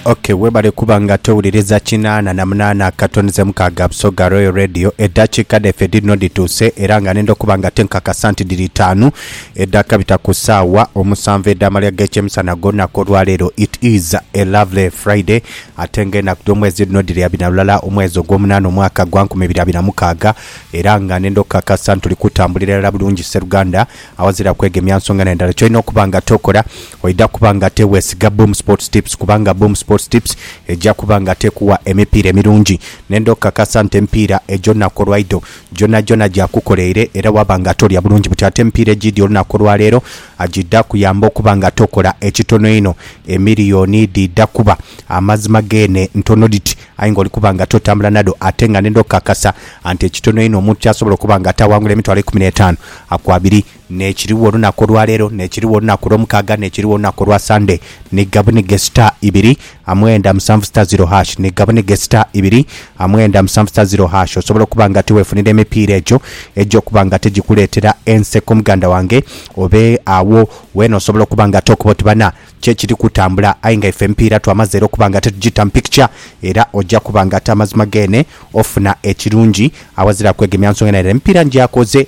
ok webale kuba nga towuliriza kinaana na munaana akatoni ze mukaaga busoga royal radio eddakiika dhaife dhirino dhituuse era nga nenda okuba nga tenkakasa nti dhiri itaanu edhakabita ku ssaawa omusanvu edh'amalya g'ekyemisana ag'olunaku olwaleero it is a lovely friday ate nga enaku dh'omwezi dhino dhiri abiri na lulala omwezi ogw'omunaana omwaka gwa nkumi ibiri abiri na mukaaga era nga nenda okukakasa nti tuli kutambulira irala bulungi sseruganda awazira kwegemya nsonga na ndala kyolina okuba nga tokola Oidha kuba ng'ate weesiga Boom Sports Tips kubanga Boom Sports Tips eja kuba ng'ate ekuwa emipiira emirungi. Nenda okukakasa nti emipiira egy'olunaku olwaidho gyonagyona gyakukoleire era waaba ng'ate olya bulungi buti. Ate emipiira egiidhi olunaku olwaleero giidha kuyamba okuba ng'ate okola ekitono einho. Emiliyoni dhiidha kuba amazima geene ntono dhiti aye ng'oli kuba ng'ate otambula nadho ate nga nenda okukakasa nti ekitono einho omuntu ky'asobola okuba ng'ate awangula emitwalo eikumi n'etaanu ku abiri N'ekirigho olunaku olwa leero, n'ekirigho olunaku olwomukaaga, n'ekirigho olunaku olwa Sande, ni gabunige sita ibiri amwenda musanvu sita ziro hash, ni gabunige sita ibiri amwenda musanvu sita ziro hash. Osobola okuba nga tiweefunira emipiira egyo egy'okuba nga tigikuleetera enseko muganda wange? Oba agho weena osobola okuba nga ate okuba oti bana ki ekiri kutambula aye nga ife emipiira twamaze era okuba nga ate tugiita mu picture era oja kuba nga ate amazima geene ofuna ekirungi awazira kwegemya nsonga yona era emipiira ngyakoze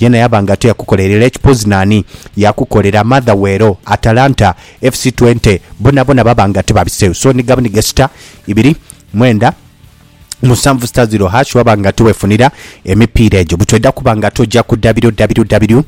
Yena yaba nga teyakukolera era ekipozi nani yakukolera mother we ero Atalanta FC Twente bona bona baba nga tebabiseu so ni gabni gesita ibiri mwenda musanvu sita ziro hash waba nga tewefunira emipiira egyo butweda kuba nga toja ku www.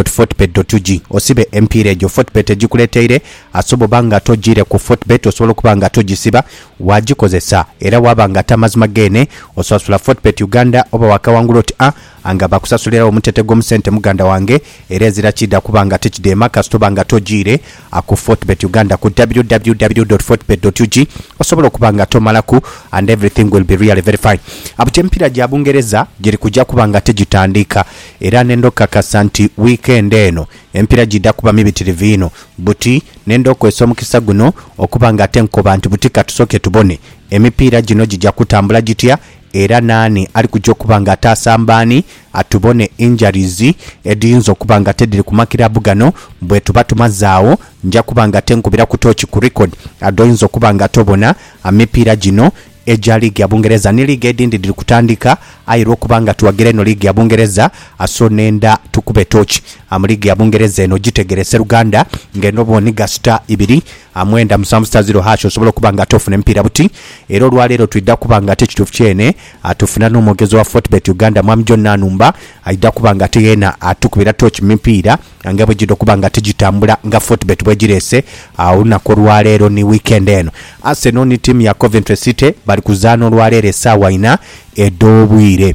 Fortebet. Ug osibe emipiira egyo Fortebet egikuleteire asobo oba nga tojire ku Fortebet osobola okuba nga tojisiba wajikozesa era waba nga tamazima gene osasula Fortebet Uganda oba wakawangula oti a Anga bakusasuliragho omutete gw'omu sente muganda wange era ezira kiidha kuba nga tikidheema kasita oba nga tojiire aku Fortebet Uganda ku www dot fortebet dot ug osobola okuba nga tomalaku and everything will be really very fine Abukya emipiira gya Bungereza giri kuja kuba nga tigitandiika era nenda okukakasa nti weekend eno emipiira giidha kuba mibitirivu inho buti nenda okozesa omukisa guno okuba nga ate nkoba nti buti katusoke tubone emipiira gino gija kutambula gitya era naani ali kuja okuba nga ataasa mbaani? Atubone injuries edhiyinza okuba nga tedhiri ku makiraabu gano bwetuba tumaze agho. Nja kuba nga ate nkubiraku tooki ku record dh'oyinza okuba nga tobona. Emipiira gino egya liigi ya Bungereza ni liigi edhindi dhiri kutandika aye lw'okuba nga tuwagira inho liigi ya Bungereza, so nenda tukube tooki mu liigi ya Bungereza eno. Gitegeere sseruganda ng'eno bw'onhiga sita ibiri A mwenda musanvu sita ziro hash osobola okuba nga ate ofuna emipiira buti era olwaleero twidha kuba nga ate ekituufu kyene atufuna n'omwogezi wa Fortebet Uganda Mwami John Nanumba aidha kuba nga ate yeena atukubira tooki mu mipiira nga bwegidha okuba nga ate gitambula nga Fortebet bwegireese olunaku olwaleero ni weekend eno. Arsenal ni tiimu ya Coventry City bali kuzaana olwaleero esaawa inha edh'obwire.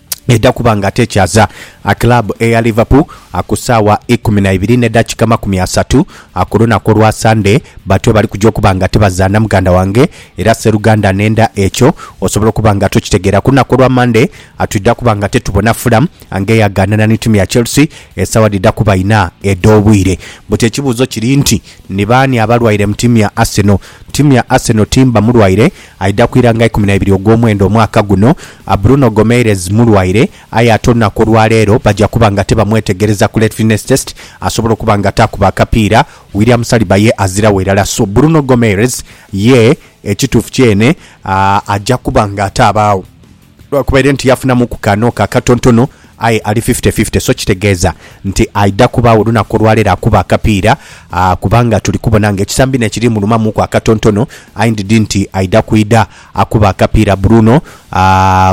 Eidha kuba nga atekyaza kiraabu eya Liverpool ku saawa ikumi na ibiri ne dakika amakumi asatu ku lunaku olwa Sande. Batyo bali kuja okuba nga tibazaana muganda wange era seruganda nenda ekyo osobola okuba nga tokitegeera. Ku lunaku olwa Mande twidha kuba nga tetubona Fulham nga eyagaanana ni tiimu ya Chelsea esaawa dhidha kuba ina edh'obwire. But ekibuuzo kiri nti ni baani abalwaire mu tiimu ya Arsenal? Tiimu ya Arsenal timba mulwaire Aidha ku ira nga ikumi na ibiri ogw'omwenda omwaka guno. Bruno Gomeirez mulwaire, aye ate olunaku olwa leero baja kuba nga tibamwetegereza ku late fitness test asobole okuba nga taakuba akapiira. William Saliba ye aziragho irala. So, Bruno Gomeirez ye ekituufu kyene aja kuba nga atabaagho. Lwa kuba ere nti yafunamu ku ka n'oka akatontono, aye ali fifty fifty, so kitegeeza nti aidha kubaagho olunaku olwaleero akuba akapiira kubanga tuli kubona nga ekisambi n'ekiri mulumamuuku akatontono aye ndidhi nti aidha kwidha akuba akapiira Bruno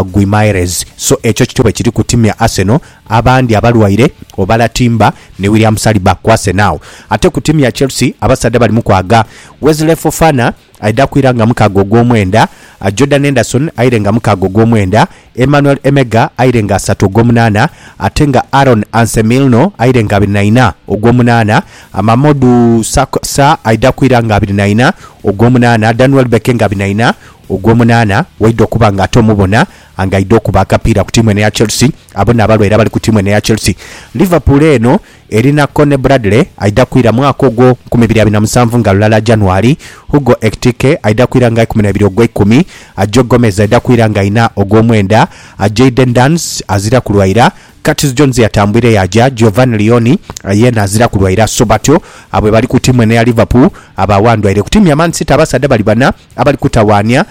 Guimaerez. So ekyo kityo bwe kiri ku tiimu ya Arsenal, abandi abalwaire obala timba ni William Saliba ku Arsenal. Ate ku tiimu ya Chelsea abasaadha balimu kwaaga Wesley Fofana, Aidha kwira nga mukaaga ogw'omwenda, Jordan Enderson aire nga mukaaga ogw'omwenda, Emmanuel Emega aire nga asatu ogw'omunaana ate nga Aaron Ansemilno aire nga abiri na ina ogw'omunaana, Mamodu Sarr aidha kwira nga abiri na ina ogw'omunaana, Dan Welbeck nga abiri na ina ogw'omunaana waidha okuba nga ate omu bona nga aidha okuba akapiira ku tiimu eno eya Chelsea. Abo n'abalwaire abali ku tiimu eno eya Chelsea. Liverpool eno. Erina Connie Bradley aidha kwira mwaka ogwo nkumi ibiri abiri na musanvu nga lulala January, Hugo Ekitike aidha kwira nga ikumi na ibiri ogweikumi, Ajo Gomez aidha kwira nga ina ogwomwenda, Jayden Danns azira kulwaira, Curtis Jones eyatambwire yaaja, Giovanni Leoni yeena azira kulwaira. So batyo abo bwe bali ku tiimu eno eya Liverpool abaagho andwaire. Ku tiimu ya Man City abasaadha bali bana abali kutawaania.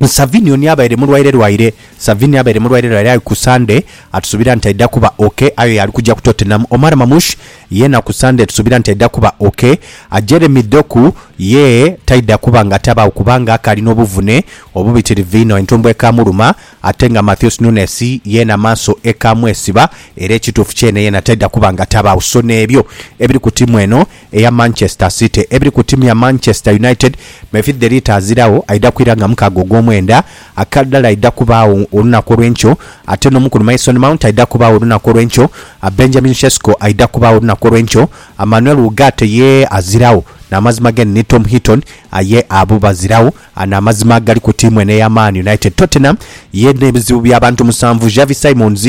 Ni Savini oni abaire mulwaire lwaire? Savini abaire mulwaire lwaire aye ku Sande atusuubira nti aidha kuba ok. Ayo y'ali kugya ku Tottenham. Omar Mamouche yeena ku Sande tusuubira nti aidha kuba ok. Jeremy Doku ye taidha kuba nga tabaagho kubanga akaali n'obuvune obubitirivu inho entumbwe ekaamuluma ate nga Matheus Nunes yeena amaaso ekaamwesiba era ekituufu kyene yeena taidha kuba nga tabaagho. So n'ebyo ebiri ku tiimu eno eya Manchester City ebiri ku tiimu ya Manchester United mefi dheri taaziragho aidha kwira nga mukaaga ogw'omwenda. Akadhala aidha kubaagho olunaku olw'enkyo, ate n'omukulu Mason Mount aidha kubaagho olunaku olw'enkyo, Benjamin Sesko aidha kubaagho olunaku olw'enkyo, Manuel Ugarte ye aziragho n'amazima geni ni Tom Heaton aye abo baziragho n'amazima agali ku tiimu eno eya Man United. Tottenham ye n'ebizibu by'abantu musanvu, Xavi Simons,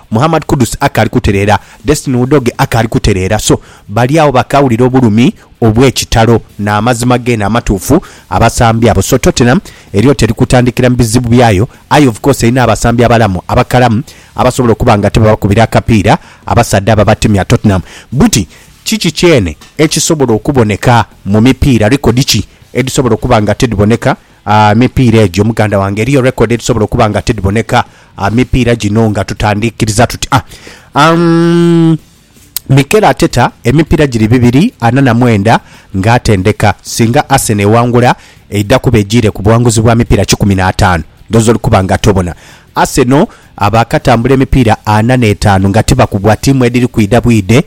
Muhammad Kudus akaali kutereera, Destiny Udoge akaali kutereera. So, bali agho bakaawulira obulumi obw'ekitalo n'amazima geene amatuufu, abasambi abo. So, Tottenham eriyo teri kutandikira mu bizibu byayo, aye of course erina abasambi abalamu, abakalamu, abasobola okuba nga tibabakubira akapiira abasaadha abo abatemya Tottenham buti. Kiki kyeene ekisobola okuboneka mu mipiira? Likodi ki edhisobola okuba nga tidhiboneka Emipiira egyo muganda wange eriyo record edhisobola okuba nga tidhiboneka emipiira gino nga tutandikiriza tutya? Umm Mikel Arteta emipiira giri bibiri ana na mwenda nga atendeka. Singa Arsenal ewangula eidha kuba ejiire ku buwanguzi bwa mipiira kikumi n'ataanu dhoozi oli kuba nga tobona. Arsenal baakatambula emipiira ana n'etaanu nga tibakubwa, tiimu edhiri kwidha bwidhe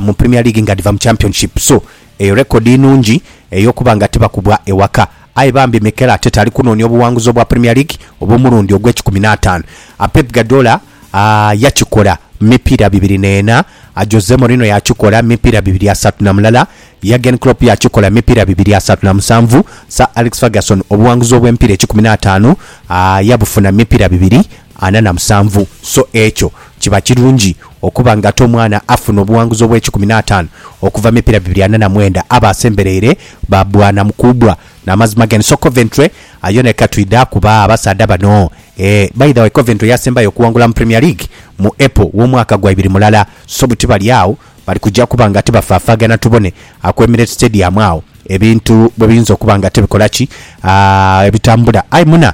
mu Premier League nga dhiva mu Championship. So Eyo rekodi nungi ey'okuba nga tibakubwa ewaka. Aye bambi Mikel Arteta ali kunoonia obuwanguzi obwa Premier League obw'omulundi ogw'ekikumi n'ataanu. A Pep Guardiola yakikola mu mipiira bibiri n'ena, a Jose Mourinho yakikola mu mipiira bibiri asatu na mulala, Jurgen Klopp yakikola mu mipiira bibiri asatu na musanvu, Sir Alex Ferguson obuwanguzi obw'emipiira ekikumi n'ataanu yabufuna mu mipiira bibiri ana na musanvu, so ekyo kiba kirungi okuba nga ate omwana afuna obuwanguzi obw'ekikumi n'ataanu okuva mipira bibiri ana na mwenda abo asembereire ba bwanamu kuubwa. N'amazima gani so Coventry ayo nayo katwidha kuba abasaadha bano eeh by the way Coventry yasembayo okuwangula mu Premier League mu April w'omwaka gwa ibiri mulala so buti bali agho bali kuja kuba nga tibafaafaagana tubone ku Emirates Stadium agho ebintu bwebiyinza okuba nga tibikola ki aah ebitambula. Aye muna.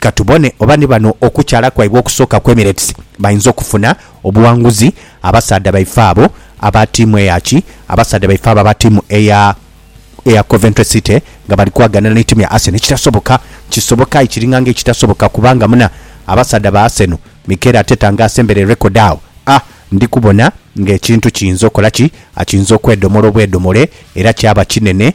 Ka tubone oba ni bano okukyala kwaibwe okusooka kw'Emirates bainza okufuna obuwanguzi. Abasaadha baife abo aba tiimu eya ki? Abasaadha baife abo aba tiimu eya eya Coventry City nga bali kwaganira ni tiimu ya Arsenal ekitasoboka. Kisoboka aye kiringa nga ekitasoboka kubanga muna abasaadha ba Arsenal Mikel Arteta nga asembere record agho a ndi kubona nga ekintu kiyinza okola ki? A kiyinza okwedomola obwedomole era kyaba kinene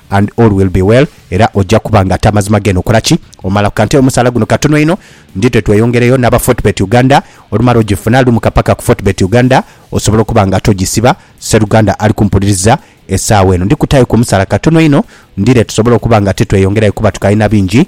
And all will be well era oja kuba nga ate amazima geno okola ki omalaku kante omusaala guno katono inho ndi twe tweyongereyo naba Fortebet Uganda olumala ojifuna lumuka paka ku Fortebet Uganda osobole okuba nga ate ojisiba seruganda ali kumpuliriza esaawa eno ndi kutayo ku omusaala katono inho ndire tusobole okuba nga ate tweyongerayo kuba tukalina bingi